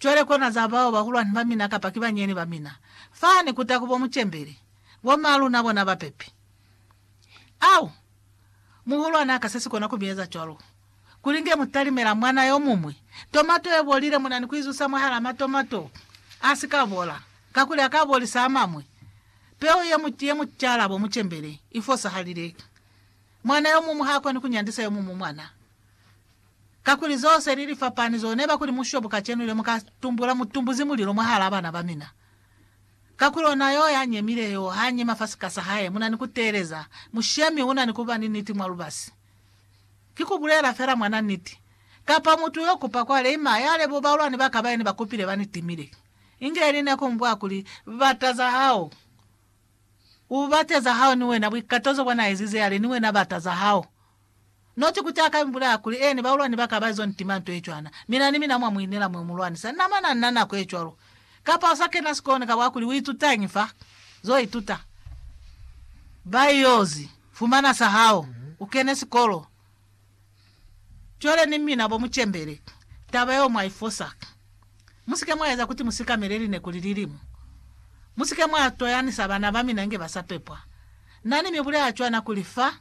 Cwale kona za bao bahulwani ba mina kapa ki banyeni ba mina, fani kuta ku bo mucembeli, bo ma luna bona ba pepi. Au! Muhulwani aka sesi kona ku mi eza cwalo. Kuli nge mu talimela mwana yo muñwi, tomato ye bolile muna ni ku izusa mwahalaa matomato a si ka bola, kakuli aka bolisa a mañwi. Peu ye mu, ye mu cala bo mucembeli, i fosahalile. Mwana yo muñwi ha koni ku nyandisa yo muñwi mwana. Kakuli zo se li li fapani zo neba kuli mushobo kacenu le muka tumbula mutumbuzi mulilo mwahala bana ba mina. Kakuli ona yo ya nyemile yo ha nyema fa sika sa hae muna ni ku teeleza, mushemi una ni kuba ni niti mwa lubasi. Ki ku bulela fela mwana niti, kapa mutu yo kupa kwa leima ya lebo baulwani baka ba ene ba kupile ba ni timile. Inge ili ne ku mbwa kuli, Bata za hao. U bate za hao ni wena, buikatozo bwa na ezize yale ni wena bata za hao. Noti kuti a ka mi bulaya kuli ene baulwani ba ka ba izo ntima nto ye cwana, mi na ni mina mwa mu inela mwe u mu lwanisa. Na mane a ni na nako ye cwalo. Kapa u sa kena sikolo, kaba wa kuli, U itutañi fa? Zo ituta. Ba yo zi fumana sa hao. U kene sikolo. Cwale ni mina bo mu cembele. Taba yeo mwa i fosa. Mu si ke mwa eza kuti mu sikamele lineku li lilimu. Mu si ke mwa toyanisa bana ba mina inge ba sa pepwa. Na ni mi bulaya cwana kuli, Fa,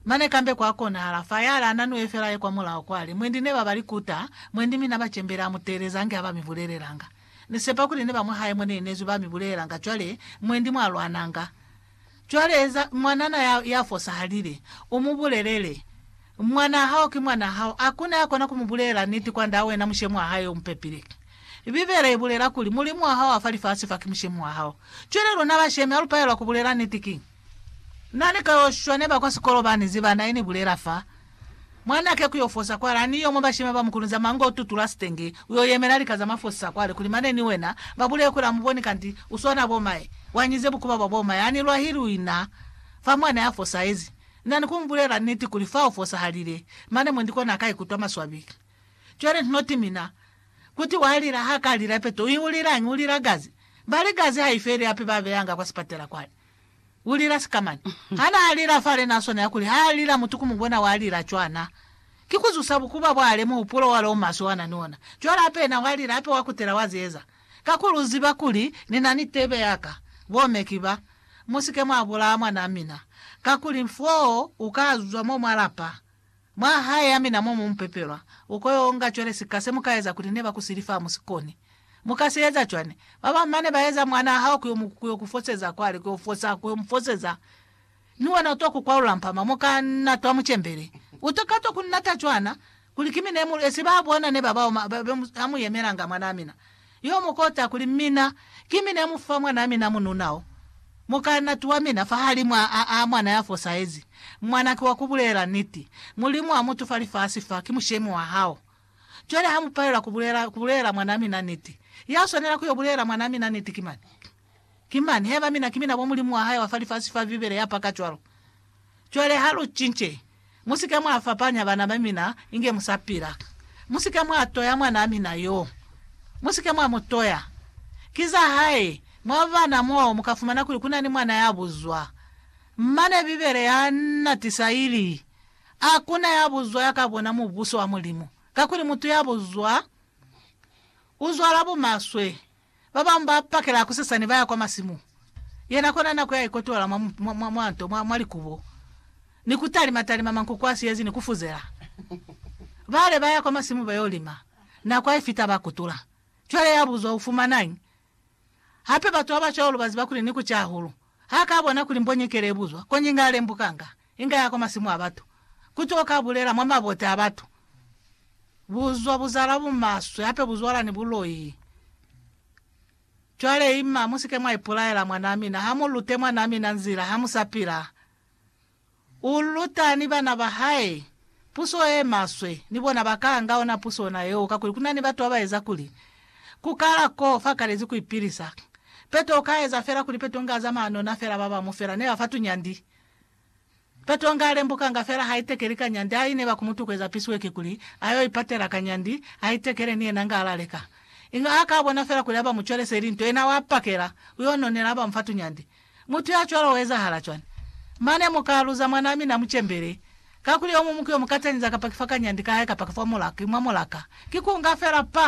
Mane kambe kwa konahala fa yale ana nue fela ye kwa mulaho kwali, Mwendi ne ba ba li kuta, mwendi mi na ba cembela, amu teeleza ange ha ba mi bulelelanga. Ni sepa kuli ne ba mwa hae mo ne inezwi ba mi bulelelanga cwale, mwendi mwa lwananga. Cwale eza, mwanana ya, ya fosahalile, u mu bulelele, Mwanaa hao ki mwanaa hao. Hakuna ya kona ku mu bulelela niti kwandaa wena mushemi wa hae yo mu pepile. Bibele i bulela kuli, Mulimu wa hao wa fa lifasi fa ki mushemi wa hao. Cwale luna bashemi, ha lu palelwa ku bulela niti, ki. Na ni kayoshwa ne ba kwa sikolo bani ziba na ini bulela fa mwa nake kuyo fosa kwale ani yomo bashima ba mukulu nzama ngo tutula sitenge uyo yemela lika zama fosisa kwale kuli mane ni wena ba buleye kuli amuboni kanti uswana bo mae wanyize bukuba bwa bo mae ani lwahili uina fa mwana ya fosahezi na ni kumubulela niti kuli fa ufosahalile mane mwendi kona aka ikutwa maswabi cwale ntnoti mina kuti wa lila ha ka lila peto uiulilangi ulila gazi bali gazi haifeli hape ba beyanga kwa sipatela kwale U lila sika mani? Ha na lila fale na swanela kuli ha lila mutu ku mu bona wa lila cwana. Ki ku zusa bukuba bwale muhupulo wale o maswe wa na ni ona. Cwale hape yena wa lila hape wa kutela wa zieza. Kakuli u ziba kuli ni na ni tebe ya ka. Bo me ki ba. Mu si ke mwa bulaya mwanaa mina. Kakuli foo u ka zwa mo mwa lapa. Mwa hae ya mina mo mu pepelwa, u ko yo nga cwale sika se mu ka eza kuli ne ba ku sili fa mu si koni. Mu ka si eza cwani? Ba bañwi ba ne ba eza mwanaa hao ku yo mu ku yo ku foseza kwale, ku yo fosa, ku yo mu foseza. Mi wena u twa ku kwalula mpama, mu ka na twa mu cembele. U to ka twa ku nata cwana, kuli ki mina ye mu esi ba bona ne ba bao, ba, ba, ba, ha mu yemelanga mwanaa mina. Yo mu kota kuli, Mina, ki mi ne mu fa mwanaa mina mununa o, mukaanati wa mina, fahalimwaa a, a mwana ya fosahezi. Mwana ki wa ku bulela niti. Mulimu a mutu fa lifasi fa, ki mushemi wa hao. Cwale ha mu palelwa ku bulela, ku bulela mwanaa mina niti, ya swanela ku yo bulela mwanaa mina niti ki mani? Ki mani, haiba mina ki mina bo mulimu wa hae wa fa lifasi fa Bibele ya paka cwalo. Cwale ha lu cince. Mu si ke mwa fapanya bana ba mina inge mu sa pila. Mu si ke mwa toya mwanaa mina yo. Mu si ke mwa mu toya. Ki za hae. Mwa bana mo, mu ka fumana kuli ku na ni mwana ya buzwa. Mane Bibele ya na tisa ili, A ku na ya buzwa ya ka bona Mubuso wa Mulimu. Kakuli mutu ya buzwa, u zwala bumaswe, Ba bañwi ba pakela kusesani ba ya kwa masimu, yena kona na ku ya ikotola mwa, mwa, mwa, mwa nto, mwa, mwa likubo, ni ku talima, talima mankuku a siyezi ni ku fuzela. Bale ba ya kwa masimu ba yo lima, nako ha i fita ba kutula. Cwale ya buzwa, U fumanañi? Hape batu ba ba cwalo ba ziba kuli ni ku ca hahulu. Ha ka bona kuli mbonyekele i buzwa, koñi nga lembukanga. Inga ya kwa masimu a batu. Ku tuka ka bulela mwa mabote a batu. Buzwa bu zala bumaswe, hape bu zwala ni buloi. Cwale, ima, mu si ke mwa ipulaela, mwanaa mina. Ha mu lute mwanaa mina nzila, ha mu sa pila. U luta ni bana ba hae puso ye maswe, ni bona ba kala nga ona puso ona yeo, kakuli ku na ni batu ba ba eza kuli, Ku kala koo, fa kalezi ku ipilisa. Peto u ka eza fela kuli Peto nga a zamaya nona fela, ba ba mu fela. Ne ba fa tunyandi. Petro nga alembukanga fela haitekeli kanyandi a ineba kumutukweza pisiwe kikuli ayo ipatela kanyandi aitekele ni yena nga alaleka. Inga ha ka bona fela kuli aba mucwelese ili nto, yena wa pakela, uyo nonela aba mufa tunyandi. Mutu ya cwalo uezahala cwani? Mane mu ka luza mwanaa mina mucembele. Kakuli yomuñwi ku yo mukatañiza kapa kifa kanyandi kahae kapa kifa mulaka, ki mwa mulaka. Ki ku nga fela pa!